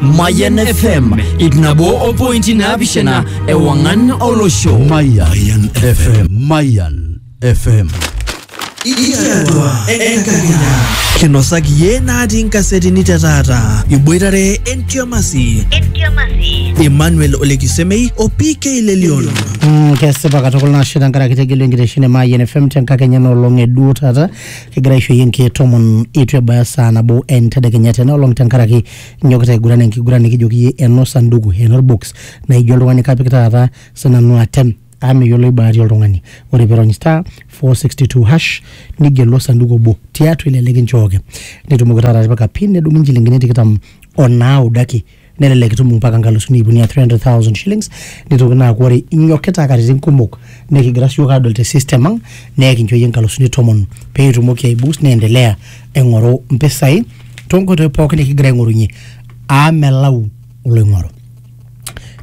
Mayan FM ip nabo o pointi naapishana ewang'an olosho. Mayan FM. Mayan FM. Ikiatua enkakenya. Kinosaki yie natii nkasetini te taata. Iboitare entiamasi. Entiamasi. Emmanuel Olekisemei o PK Lelion. Mm, kesipa katukul nashe tenkaraki tegelu enkitesheni e Mayian FM tenkakenya enoolong e duo taata kigira aishoyie nkeek tomon eitu ebaya saa nabo entedekenya tena olong tenkaraki nyokita aiguran enkiguran nikijoki iyie eno sanduku eno orbox naa ijo oltung'ani kapik taata sinanu atem amu meyioloi bahati oltung'ani ore piirony star 462 hash nigelu osanduku obo tiatua ele likinchooki nitumoki taata atipika pin nedung'i inchilingini tikitam onaaudo ake nelelek itum mpaka nkalusuni iip uni aa 300,000 shillings nitoki naa aaku ore inyokita katitin kumok nekigira siyiok adol te system ang neekincho iyie nkalusuni tomon pee itumoki aiboost niendelea aing'oru mpisai tonkoitoi pookin nikigira aing'orunye aa melau oloing'oru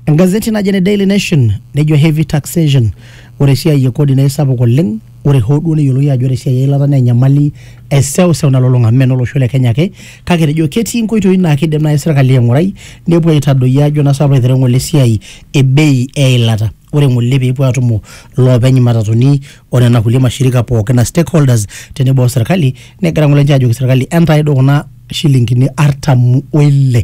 engazeti naji ene daily nation nejo heavy taxation ore esiai e kodi naa isapuk oleng ore hoo duo neyioloi ajo ore esiai eilata naa enyamali eseuseu nalulung'a amu meno olosho le kenya ake kake etejo ketii inkoitoi naa kidim naaji sirkali aing'urai nepuo aitadoyio ajo naa sapu aitereu ng'ole esiai e bei eilata ore ng'ole peepuo atumo iloopeny imatatuni onena kulie mashirika pookin a stakeholders tenebo o serkali negira ng'ole ninche ajoki serkali entae duo kuna shilingini artam oile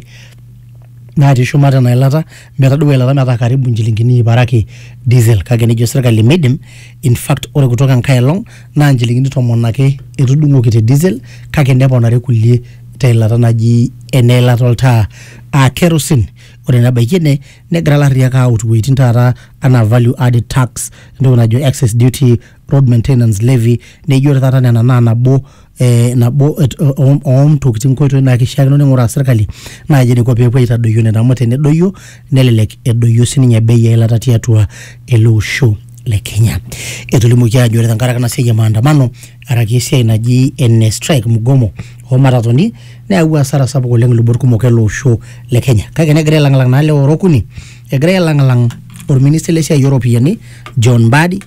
natii shumata ena ilata metadou eilata metaa karibu inchilingini iip are ake diesel kake nejo serkali meidim in fact ore kutoka enkae elong naa inchilingini tomon ake etudung'oki te diesel kake neponari kulie teilata naji ena ilata oltaa aa kerosene ore nebaiki ene negira ilarriyiak aut iwuejitin taata anaa value added tax entoki najo excess duty road maintenance levy neijo ore taata nena naa nabo eh, nabo et- o- oontokitin nkoitoi naa kishiakino ning'uraa sirkali naaji eniko peepuo aitadoyio nena amu tenedoyio nelelek edoyio sininye bei eilata tiatua ele osho le kenya etolimuoki ajo ore tenkaraki ena siai e maandamano araki esiai naji ene strike mgomo oomatatoni neyawua asara sapuk oleng ilubot kumok ele osho le kenya kake negira ailang'lang naa lewa ora okuni Egirai ailang'lang orministai le siai ooropiyiani John Mbadi,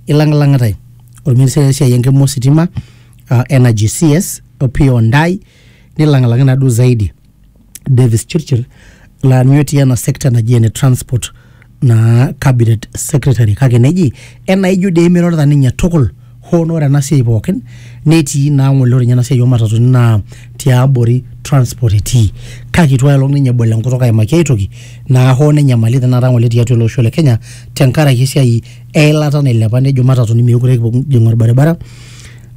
ilang'lang'itai orministai le siai enkima ositima uh, Energy CS Opiyo Ndai, nilang'lang'i naaduo zaidi Davis Chirchir laa ninye otii ena sekta naji ene transport naa cabinet secretary kake neji enaijo dei emirorita ninye tukul hoo naa ore ena siai pookin netii naa ng'ole ore ninye ena siai oomatatuni naa tiabori transport etii kake itu aelong ninye ebol enkutuk aimaki ai toki naa hoo nenyamali tenakata ng'ole tiatua ele osho le Kenya tenkaraki esiai eilata nailepa nejo matatuni meekure kipuo kijing orbaribara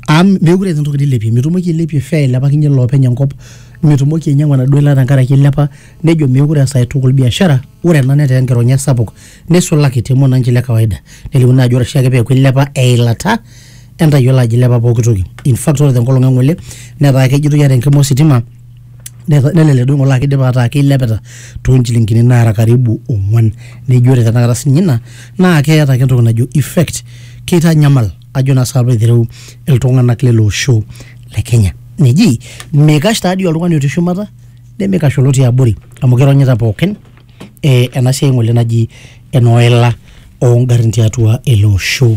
amu meekure eeta entoki nilepie mitumoki ailepie fare ailepakinyie iloopeny enkop mitumoki ainyiang'u enaduo ilata tenkaraki ilepa nejo meekure ees ae tukul biashara ore ena netaa enkironya sapuk. neisulaki te mwananchi le kawaida nelimu naa ajo ore oshiake peeku ilepa eilata entayiolo ajo ilepa pooki toki in fact ore tenkolong e ng'ole netaa kejitoi ata enkima ositima neta- nelelek duo ng'ole aa kidipa ataa keilepita toonchilingini naara karibu ong'uan neji ore tenakata sininye ina naa keeta ake entoki najo effect keitanyamal ajo naa saapa aitereu iltung'anak lele osho le kenya neji meikash taadii oltung'ani otii shumata nemeikash olotii abori amu kironyita pookin ena siai ng'ole naji enoila ongarrin tiatua ele osho.